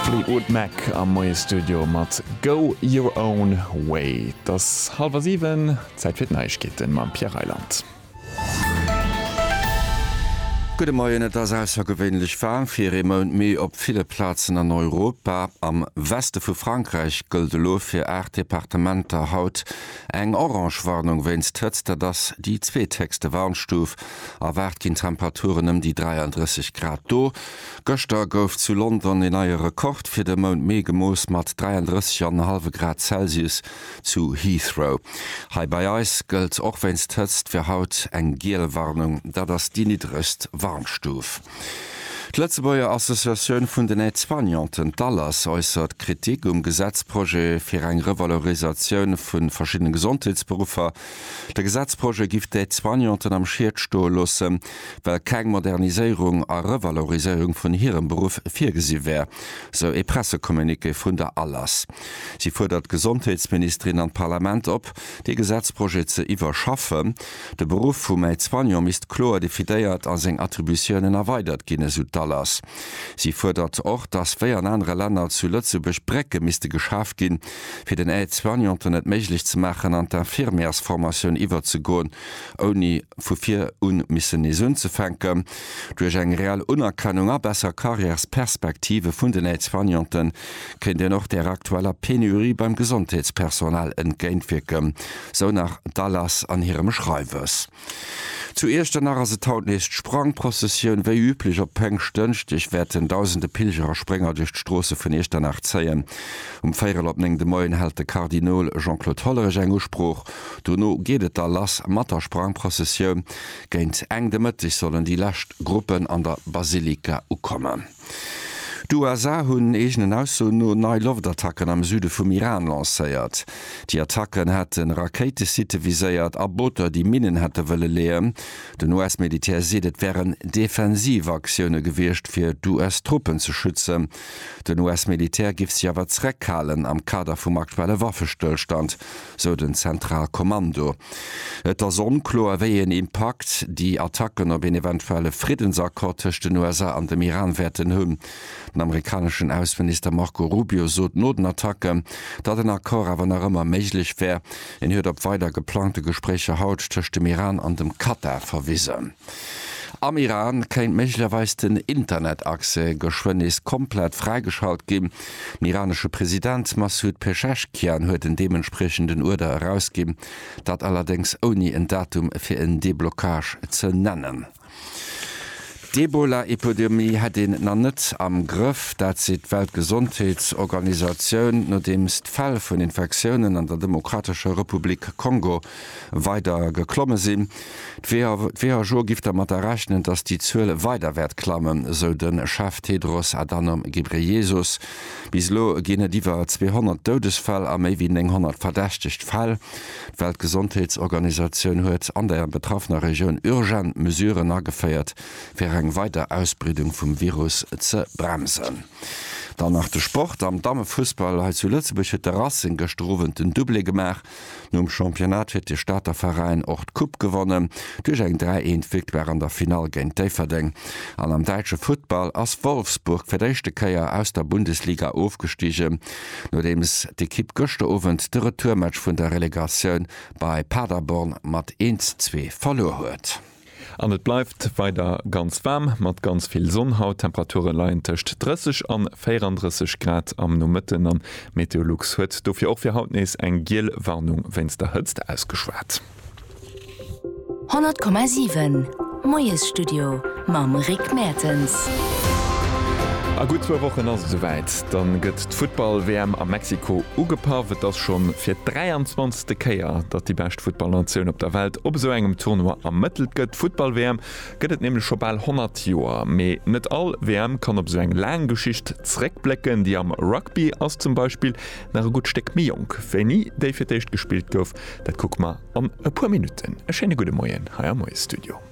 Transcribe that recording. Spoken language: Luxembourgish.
Fleetwood Mac am Moie Studio mat Go Your Own Way. Et ass hallwer siwen, Zäit fir d'Neiegkeete mam Pierre Reyland. Gudde Moien, Et ass aussergewéinlech waarm fir ee Mount Mee op ville Plazen an Europa. Am Weste vu Frankräich gëllt elo fir aacht Departementer haut eng orange Warnung wéinst Hëtzt. Dat ass déi zweethéchste Warnstuf. Erwaart ginn Temperaturen ëm déi 33 Grad do. Gëschter gouf zu London een neie Rekord fir de Mount Mee gemooss mat 33 an en hallwe Grad Celsius zu Heathrow. Hei bei eis gëllt och wéinst d'Hëtzt fir haut eng giel Warnung, dat ass déi niddregst Warnstuf. D'Lëtzebuerger Associatioun vun den Aide-soignanten, d'ALAS, äussert Kritik um Gesetzprojet fir eng Revalorisatioun vu verschiddene Gesondheetsberuffer. De Gesetzprojet giff d'Aide-soignanten am Schied stoe loossen. well keng Moderniséierung a Revaloriséierung vun hirem Beruff virgesi wär, sou ee Pressecommuniqué vun der ALAS. Si fuerdert d'Gesondheetsministerin an d'Parlament op, dee Gesetzprojet ze iwwerschaffen. De Beruff vum Aide-soignant misst kloer definéiert a seng Attributiounen erweidert ginn, esou d'ALAS. Si fuerdert och, datt wéi an anere Länner zu Lëtzebuerg Brécke misste geschaf ginn, fir den Aide-soignanten et méiglech ze maachen, an d'Infirmièresformatioun iwwerzegoen. ouni vu vir un missen nees unzefänken, duerch eng reell Unerkennung a besser Carrièresperspektive vun den Aide-soignanten kéint een och där aktueller Penurie beim Gesondheetspersonal entgéintwierken, sou nach d'ALAS an hirem Schreiwes. Zu Iechternach ass et haut nees d'Sprangprozessioun. Wéi üblech op Péngschtdënschdeg wäerten dausende Pilger a Sprénger duerch d'Stroosse vun Iechternach zéien. Um véierel op néng de Moien hält de Kardinol Jean-Claude Hollerich eng Usprooch Dono geet et da lass mat der Sprangprëssessioun. Géint eng de Mëtteg sollen déi lescht Gruppen an der Basilika ukommen. D'USA hunn eegenen Aussoen no nei Loftattacken am Süde vum Iran lancéiert. Déi Attacken hätte Rakéitesitte viséiert a Booter, déi Minnen hätte wëlle leeën. Den US-Militär seet, et wären defensiv Aktioune gewiescht, fir d'US-Truppen ze schützen. Den US-Militär géif sech awer zeréckhalen am Kader vum aktuelle Waffestëllstand. sou den Zentralkommando. Et ass onkloer, wéi een Impakt déi Attacken op een eventuelle Friddensaccord tëscht den USA an dem Iran wäerten hunn. Den amerikaneschen Ausseminister Marco Rubio sot no den Attacke, datt en Accord awer nach ëmmer méiglech wär. En huet op weider geplangte Gespréicher haut tëscht dem Iran an dem Katar verwisen. Am Iran kéint méiglecherweis den Internetaccès geschwënn nees komplett fräigeschalt ginn. Den iranesche President Massoud Pezeshkian huet en deementspriechenden Uerder erausginn, dat allerdéngs ouni en Datum fir en Deblockage ze nennen. D'Ebola-Epidemie hätt een nach net am Grëff, dat seet d'Weltgesondheetsorganisatioun, nodeems d'Fäll vun Infektiounen an der Demokratescher Republik Kongo weider geklomme sinn. D'WHO giff dermat rechnen, datt déi Zuel weider wäert klammen, sou de Chef Tedros Adhanom Ghebreyesus. Bis elo ginn et iwwer 200 Doudesfäll a méi wéi 900 verdächtegt Fäll. D'Weltgesondheetsorganisatioun huet an der betraffener Regioun urgent Mesuren ageféiert, fir eng weider Ausbreedung vum Virus ze bremsen. Dann nach de Sport am Dammefussball. Hei zu Lëtzebuerg huet de Racing gëschter Owend den Doublé gemaach. Nom Championnat fir de Stater Veräin och d'Coupe gewonnen duerch eng 3, 1 Victoire an der Finall géint Déifferdeng. An am däitsche Futtball ass Wolfsburg fir d'éischte Kéier aus der Bundesliga ofgestigen, nodeems d'Ekipp gëschter Owend de Retourmatch vun der Relegatioun bei Paderborn mat 1, 2 verluer huet. An et bleift weider ganz waarm mat ganz vill Sonn haut. D'Temperature leien tëscht 30 an 34 Grad am Nomëtten an d'Meteolux huet dofir och fir haut nees eng giel Warnung wéinst der Hëtzt ausgeschwat. 100,7 Moiesstudio mam Rick Mertens. A gutt zwou Wochen ass et esouwäit, da gëtt d'Futtball-WM a Mexiko ugepaff. Et ass schonn fir d'23. D'leschte Kéier, datt déi bescht Futtballnatioun op der Welt op esou engem Tournoi ermëttelt gëtt. D'Futtball-WM gëtt et nämlech scho bal 100 Joer. Mee net all WM kann op esou eng laang Geschicht zeréckblécken. Déi am Rugby ass zum Beispill nach e gutt Stéck méi jonk wéini déi fir d'éischt gespillt gouf. Dat kucke mer an e puer Minutten. E schéine gudde Moien hei am Moiesstudio.